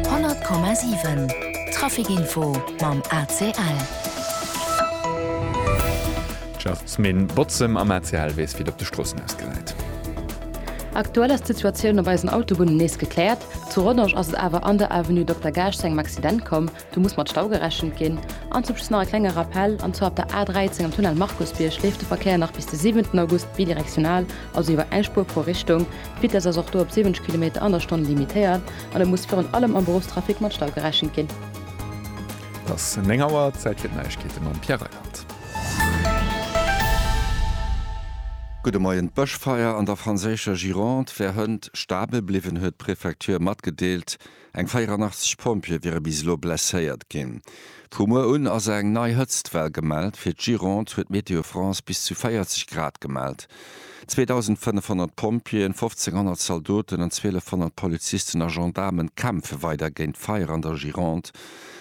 100,7 Traficinfo mam ACL. D'Schäftsminn Botzem am ACL weess, wéi et op de Stroossen ausgesäit. Aktuell ass d'Situatioun op eisen Autobunnen nees gekläert. Zu Rodange ass et awer an der Avenue Dokter Gaasch zu engem Accident komm. Do muss mat Stau gerechent ginn. An zum Schluss nach e klenge Rappell, an zwar op der A13 am Tunnel Markusbierg leeft de Verkéier nach bis de 7 August bidirektional, also iwwer eng Spuer pro Richtung. D'Vitess ass och do op 70 Kilometer an der Stonn limitéiert an et muss virun allem am Beruffstrafic mat Stau gerechent ginn. Et ass 9 Auer, Zäit fir d'Neiegkeete mam Pierre Reichert. Gudde Moien. D'Bëschfeier an der franséischer Gironde wär hënt stabel bliwwen, huet d'Prefecture matgedeelt. Eng 84 Pompjeeë wiere bis elo blesséiert ginn. Vu muer un ass eng nei Hëtztwell gemellt. Fir d'Gironde huet Météo France bis zu 40 Grad gemellt. 2.500 Pompjeeën, 1.500 Zaldoten an 1.200 Polizisten a Gendaarmen kämpfe weider géint d'Feier an der Gironde.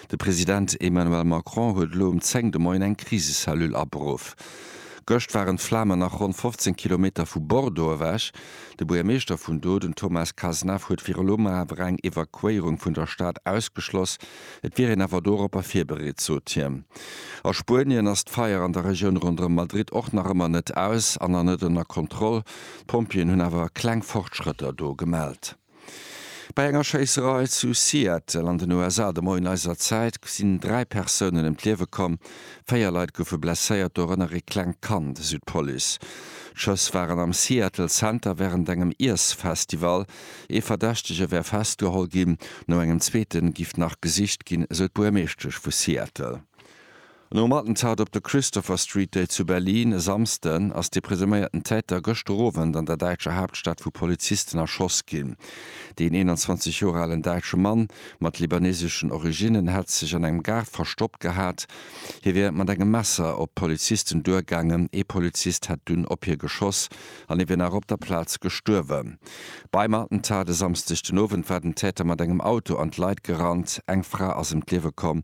De President Emmanuel Macron huet elo um 10 de Moien eng Krisecellule aberuff. Gëscht waren d'Flamen nach ronn 15 Kilometer vu Bordeaux ewech. De Buergermeeschter vun do, den Thomas Cazenave, huet fir elo mol awer eng Evakuéierung vun der Stad ausgeschloss. Et wier een awer doropper virbereet, sot hien. A Spuenien ass d'Feier an der Regioun ronderëm Madrid och nach ëmmer net aus an an net ënner Kontroll. D'Pompjeeën hunn awer kleng Fortschrëtter do gemellt. Bei enger Schéisserei zu Seattle an den USA de Moien eiser Zäit sinn dräi Persounen ëm d'Liewe komm, véier Leit goufe blesséiert, dorënner ee klengt Kand, esou d'Police. D'Schëss waren am Seattle Center wärend engem Iessfestival. Ee Verdächtege wär festgeholl ginn, no engem zweete giff nach gesicht ginn, esou d'Buermeeschtesch vu Seattle. Nom Attentat op de Christopher Street Day zu Berlin e Samsden ass de presuméierten Täter gëschter Owend an der däitscher Haaptstad vu Polizisten erschoss ginn. Deen 21 Joer alen däitsche Mann mat libaneseschen Originnen hätt sech an engem Gaart verstoppt gehat. Hie wier mat engem Messer op d'Polizisten duergaangen, ee Polizist hätt dunn op hie geschoss an hie wier nach op der Plaz gestuerwen. Beim Attentat e Samsdeg den Owend war den Täter mat engem Auto an d'Leit gerannt. Eng Fra ass ëm d'Liewe komm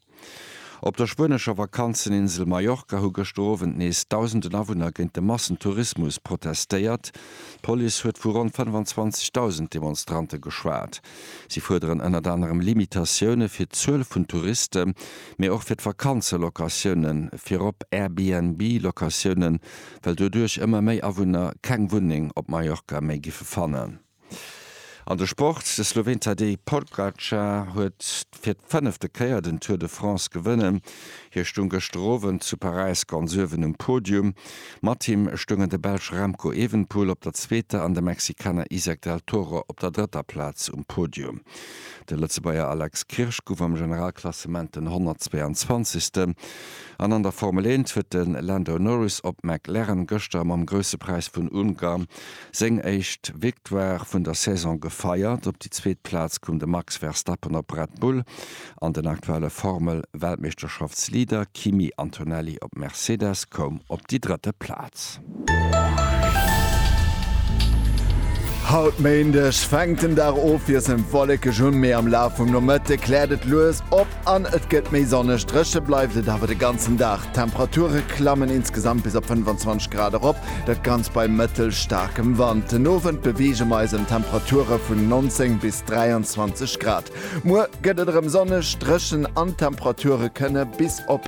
Op der spuenescher Vakanzeninsel Mallorca hu gëschter Owend nees dausenden Awunner géint de Massentourismus protestéiert. D'Police huet vu ronn 25.000 Demonstrante geschwat. Si fuerderen ënnert anerem Limitatioune fir d'Zuel vun Touriste mee och fir d'Vakanzelocatioune virop Airbnb-Locatioune well doduerch ëmmer méi Awunner keng Wunneng op Mallorca méi giffe fannen. An de Sport, De Sloween Tadej Pogacar huet fir d'fënnefte Kéier den Tour de France gewënnen. Hie stoung gëschter Owend zu Paräis ganz uewen um Podium. Mat him stoungen de Belsch Remco Evenpoel op der zweeter an de Mexikaner Isaac del Toro op der drëtter Plaz um Podium. De Lëtzebuerger Alex Kirsch gouf am Generalklassement den 122. An an der Formel Eent huet de Lando Norris op McLaren gëschter mam Grousse Präis vun Ungarn Seng éischt Victoire vun der Saison gefeiert. Op déi zweet Plaz koum de Max Verstappen op Red Bull an den aktuelle Formel-Weltmeeschterschaftsleader Kimi Antonelli op Mercedes koum op déi drëtte Plaz. Haut Méindeg fänkt den Dag ofwiesselnd wollekeg un, mee am Laf vum Nomëtte kläert et lues op. An et gëtt méi sonneg. Dréche bleift et awer de ganzen Dag. D'Temperature klammen insgesamt bis op 25 Grad erop, dat Ganzt bei mëttelstaarkem Wand. Den Owend beweege mer eis ëm Temperature vun 19 bis 23 Grad. Muer gëtt et erëm sonneg, dréchen an d'Temperature kënne bis op.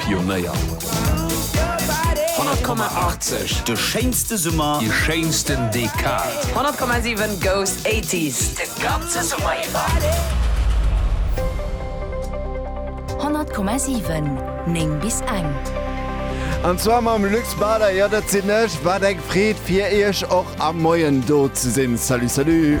Pionéier. 100,80, de schéinste Summer, déi schéinsten Dekad. 100,7 goes 80s, de ganze Summer iwwer. 100,7 9 bis eng. An zwar mam Luc Bader, jo dat sinn ech. Wat eng Freed fir iech och am Moien do ze sinn. Salut salut.